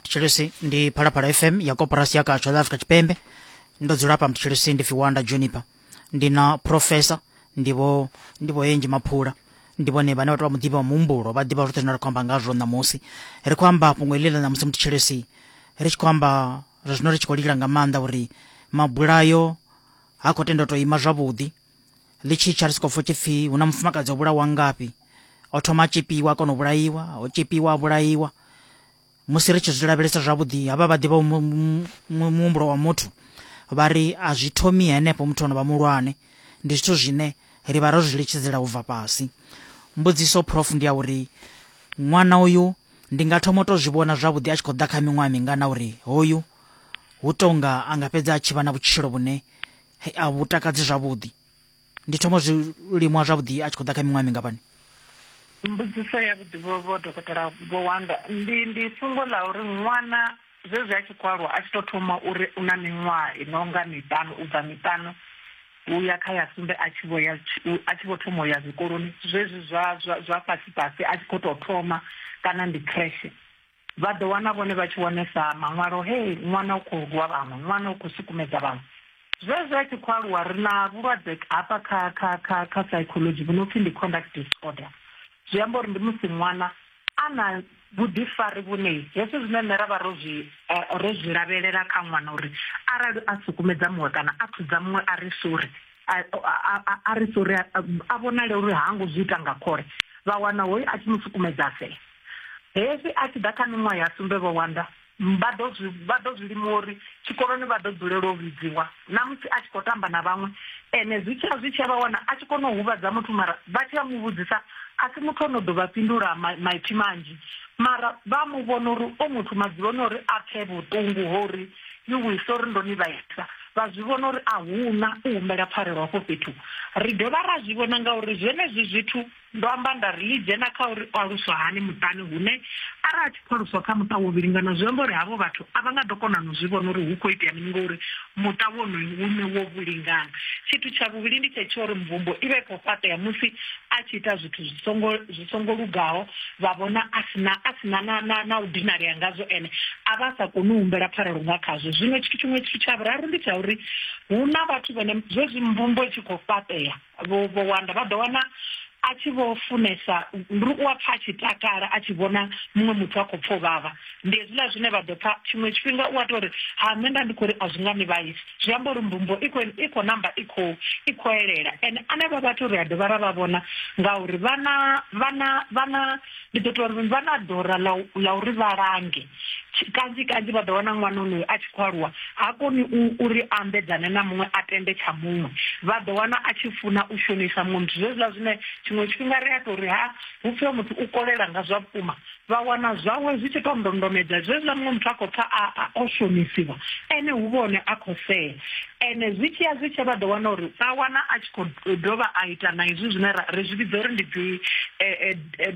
mthitshilisi ndi phalaphala fm ya koporasi ya katsho la africa tshipembe ndo dzula pa mthitshilisi ndi fiwanda juniper ndi na professor ndivo ndivo enji maphula ndi vhone vhane vhathu vha muḓivha wa muhumbulo vha ḓivha zwoṱhe zwine ra khou amba ngazwo ṋamusi ri khou amba fhungo iḽi ḽa ṋamusi mthitshilisi ri tshi khou amba zwa zwino ri tshi khou lila nga maanḓa uri mabulayo ha khou tenda u tou ima zwavhuḓi ḽi tshi tsha ri si khou pfha tshipfi hu na mufumakadzi o vhulawa ngafhi o thoma a tshipiwa kona u vhulaiwa o tshipiwa a vhulaiwa musi ri tshi zwi lavhelesa zwavhuḓi havha vha ḓivha muhumbulo wa muthu vha ri a zwi thomi henefho muthu ono vha mulwane ndi zwithu zwine ri vha ro zwi litshidzela u bva fhasi mbudziso prof ndi ya uri ṅwana uyu ndi nga thoma u to zwi vhona zwavhuḓi a tshi khou ḓa kha miṅwaha mingana uri hoyu hu tonga a nga fhedza a tshi vha na vhutshilo vhune hei a vhu takadzi zwavhuḓi ndi thoma zwiliṅwa zwavhuḓi a tshi khou ḓa kha miṅwaha mingafhani mbudziso ya vhuḓi vho vho dokotela vho wanda ndi ndi fhungo ḽa uri ṅwana zwezwi a tshi khou aluwa a tshi tou thoma uri u na miṅwaha i no nga miṱanu u bva miṱanu u ya kha ya sumbe a tshi vho ya a tshi vho thoma u ya zwikoloni zwezwi zwa zwa zwa fhasi fhasi a tshi khou tou thoma kana ndi khreshe Vha ḓo wana vhone vha tshi wanesa maṅwalo he ṅwana u khou rwa vhaṅwe, ṅwana u khou sukumedza vhaṅwe. Zwezwo a tshi khou aluwa, ri na vhulwadze hafha kha, kha, kha, kha psychology vhu no pfi ndi conduct disorder. Zwi amba uri ndi musi ṅwana a na vhuḓifari vhune hezwi zwine nṋe ra vha ro zwi, eh, ro zwi lavhelela kha ṅwana uri arali a sukumedza muṅwe kana a thudza muṅwe a ri sori, a, a, a, a ri sori, a, a vhonale uri ha ngo zwi ita nga khole, vha wana hoyu a tshi mu sukumedza a fela. Hezwi a tshi ḓa kha miṅwaha ya sumbe vho wanda vha ḓo zwi vha ḓo zwi lima uri tshikoloni vha ḓo dzulela u vhidziwa na musi a tshi khou tamba na vhaṅwe ene zwi tshi ya zwi tshi ya vha wana a tshi kona u huvhadza muthu mara vha tshi ya mu vhudzisa a si muthu ono ḓo vha fhindula maipfi manzhi mara vha mu vhona uri o muthu madzuloni uri a pfhe vhuṱungu ho uri you will sorry ndo ni vhaisa vha zwi vhona uri a huna u humbela pfarelo hafho fhethu ri dovha ra zwi vhona ngauri zwenezwi zwithu Ndo amba nda ri, Ḽi dzhena kha uri o aluswa hani muṱani hune arali a tshi khou aluswa kha muṱa wo vhilingana zwi amba uri havho vhathu a vha nga ḓo kona na u zwi vhona uri hu khou itea mini ngori muṱa wonoyo u ne wo vhilingana. Tshithu tsha vhuvhili ndi tshe tsha uri mvumbo i vha i khou fhaṱea musi a tshi ita zwithu zwi songo zwi songo lugaho vha vhona a si na a si na na na na u dinalea ngazwo ene a vha a sa koni u humbela pfarelo nga khazwo. Zwino tshithu tshiṅwe tshithu tsha vhuraru ndi tsha uri hu na vhathu vhane zwezwi mvumbo i tshi khou fhaṱea vho vho wanda vha ḓo wana a tshi vho funesa ndi uri u a pfa a tshi takala a tshi vhona muṅwe muthu a khou pfa u vhavha ndi hezwiḽa zwine vha ḓo pfa tshiṅwe tshifhinga u a tou ri ha nṋe nda ndi khou ri a zwi nga ni vhaisi zwi amba uri mbumbo i khou i khou namba i khou i khou elela ene anevha vhathu ri a dovha ra vha vhona ngauri vhana vhana vhana ndi ḓo tou ri vha na dora ḽa uri vha lange kanzhi kanzhi vha ḓo wana ṅwana onoyo a tshi khou aluwa ha koni uri ambedzane na muṅwe a tende tsha muṅwe vha ḓo wana a tshi funa u shonisa muṅwe muthu zwezwiḽa zwine tshiṅwe tshifhinga ri a tou ri ha hu pfhiwa muthu u kolela nga zwa vhukuma vha wana zwawe zwi tshi tou ndondomedza zwezwiḽa muṅwe muthu a khou pfa a o shonisiwa ene hu vhone a khou sea ene zwi tshiya zwi tshe vha ḓo wana uri vha wana a u dovha a ita na izwi zwine ri zwi vhidza uri ndi dzi eh, eh, eh,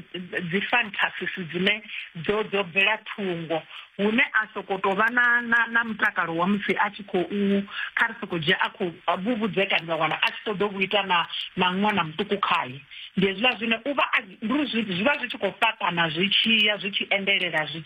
dzi fantasies dzine dzo dzo bvela thungo hune a soko to vha na na na mutakalo wa musi a tshi khou kha ri soko dzhia a khou vhuvhudzekani vha wana a tshi ṱoḓa u ita na na ṅwana muṱuku khaye ndi hezwiḽa zwine u vha ndi zwi vha zwi tshi khou fhaṱana zwi tshiya zwi tshi endelela zwi